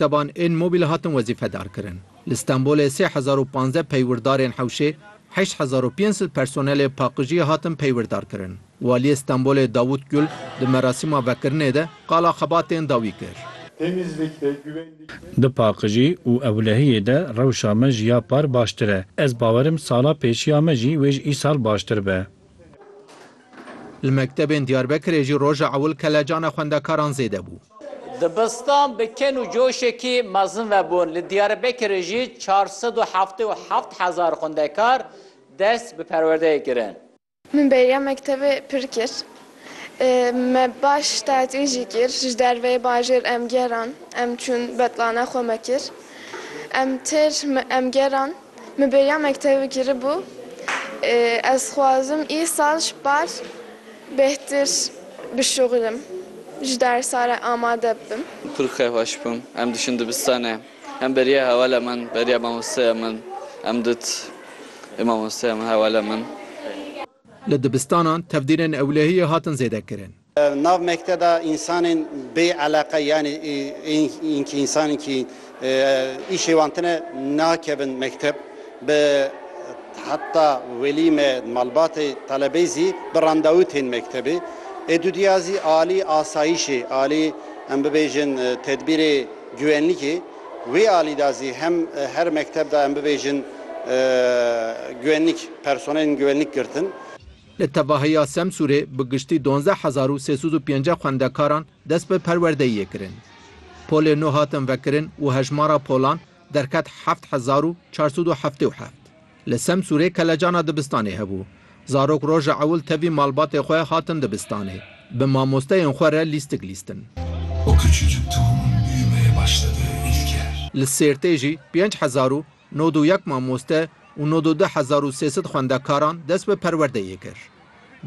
Teban ên mobîl hatin wezîfedarkirin. Li Stenbolê sê hezar û panzdeh peywirdarên hewşê, heşt hezar û pênc sed personelê paqijiyê hatin peywirdarkirin. Waliyê Stenbolê Davût Gul di merasîma vekirinê de qala xebatên da wî kir. Di paqijî û ewlehiyê de rewşa me ji ya par baştir e. Ez bawerim sala pêşiya me jî wê ji îsal baştir be. Li mektebên Diyarbekirê jî roja ewil kelecana xwendekaran zêde bû. Dibistan bi ken û coşekî mezin vebûn. Li Diyarbekirê jî çar sed û heftê û heft hezar xwendekar dest bi perwerdeyê kirin. Min bêriya mektebê pir kir. Me baş tatil jî kir. Ji derveyê bajêr em geran. Em çûn betlana xwe me kir. Em têr em geran. Min bêriya mektevê kiribû. Ez dixwazim îsal ji par bêhtir bişuxilim, ji dersa re amade bibim. Kur xêh weş bûm. Em diçin dibistanê. Em beriya hewala min, beriya mamosteya min. Em dit ê mamosteya min hewala min. Li dibistanan tevdîrên ewlehiyê hatin zêdekirin. Nav mekte de însanên bê eleqe yanî ên kî însanên kî îşê wan tine nakevin mekteb bi heta welî me malbatê telebeyî zî bi randewû tên mektebê. Ê dûdîya zî alî asayîşê alî em bibêjin tedbîrê güwenlîkê wê alî de zî hem her mekteb de em bibêjin güwenlîk personelên güwenlîk girtin. Li tevahiya Semsûrê bi giştî dozdeh hezar û sê sed û pêncî xwendekaran dest bi perwerdeyiyê kirin. Polê nû hatin vekirin û hejmara polan derket heft hezar û çar sed û heftê û heft. Li Semsûrê kelecana dibistanê hebû. Zarok roja ewil tevî malbatê xwe hatin dibistanê bi mamosteyên xwe re lîstik lîstin. Li Sêrtê jî pênc hezar û Nod û yek mamoste û nod û du hezar û sê sed xwendekaran dest bi perwerdeyê kir.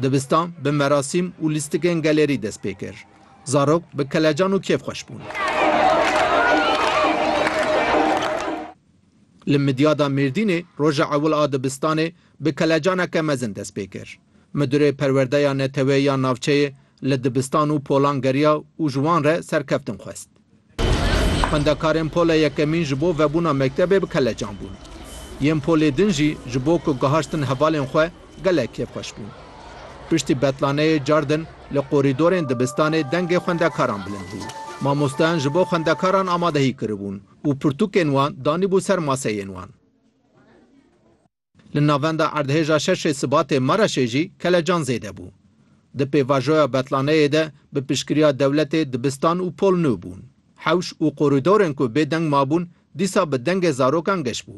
Dibistan bi merasîm û lîstikên gelerî dest pê kir. Zarok bi kelecan û kêfxweş bûn. Li Midyada Mêrdînê roja ewil a dibistanê bi kelecaneke mezin dest pê kir. Midurê Perwerdeya Neteweyî ya Navçeyê li dibistan û polan geriya û ji wan re serkeftin xwest. Xwendekarên pola yekemîn ji bo vebûna mektebê bi kelecan bûn. Yên polê din jî ji bo ku gihaştin hevalên xwe gelek kêfxweş bûn. Piştî betlaneyê car din li qorîdorên dibistanê dengê xwendekaran bilind bû. Mamostayan ji bo xwendekaran amadehî kiribûn û pirtûkên wan danîbû ser maseyên wan. Li navenda erdhêja şeşê Sibatê Maraşê jî kelecan zêde bû. Di pêvajoya betlaneyê de bi piştgiriya dewletê dibistan û pol nû bûn. Hewş û qorîdorên ku bê deng mabûn dîsa bi dengê zarokan geş bû.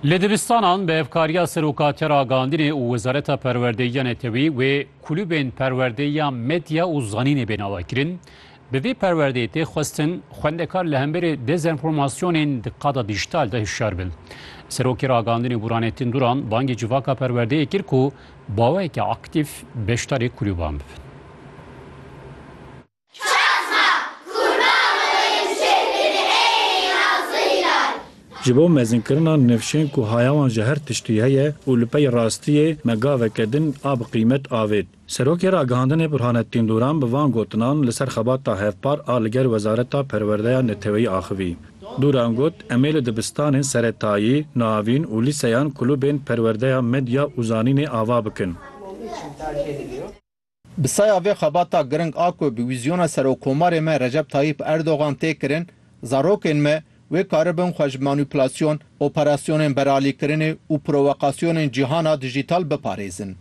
Li dibistanan bi hevkariya Seroka Tera Gandinê û Wezareta Perwerdeyiya Netewî wê kulubên perwerdeyiya medya û zanînê bê navekirin. Bi vê perwerdeyê tê xwestin xwendekar li hemberî dezenformasyonên di qada dîjîtal de hişyar bin. Serokê Ragandinê Burhanettin Duran bangê civaka perwerdeyê kir ku baweyeke aktîf beşdarê kulûban bibin. Ji bo mezinkirina nifşên ku haya wan ji her tiştî heye û li pey rastiyê me gaveke din a bi qîmet avêt. Serokê Ragihandinê Burhanettin Duran bi van gotinan li ser xebata hevpar a li gel Wezareta Perwerdeya Neteweyî axivî. Duran got, Em ê li dibistanên seretayî, navîn û lîseyan kulubên perwerdeya medya û zanînê ava bikin. Bi saya vê xebata giring a ku bi wîzyona Serokkomarê me Recep Tayyîp Erdogan tê kirin, zarokên me Wê karibin xwe ji manûplasyon, operasyonên beralîkirinê û prowokasyonên cîhana dijîtal biparêzin.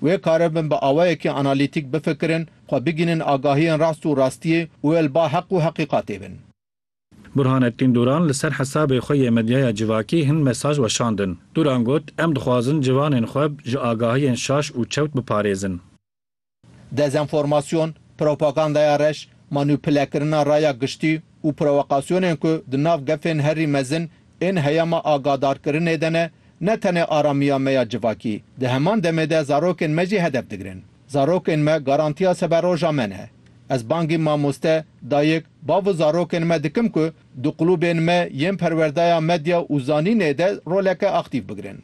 Wê karibin bi awayekî analîtîk bifikirin, xwe bigihînin agahiyên rast û rastiyê û wê li ba heq û heqîqatê bin. Burhanettin Duran li ser hesabê xwe yê medyaya civakî hin mesaj weşandin. Duran got, Em dixwazin civanên xwe ji agahiyên şaş û çewt biparêzin. Dezenformasyon, propagandaya reş, manupulekirina raya giştî û prowokasyonên ku di nav gefên herî mezin ên heyama agadarkirinê de ne, ne tenê aramiya me ya civakî, di heman demê de zarokên me jî hedef digirin. Zarokên me garantiya seberoja me ne. Ez bangî mamoste, dayik, bav û zarokên me dikim ku di qulûbên me yên perwerdaya medya û zanînê de roleke aktîf bigirin.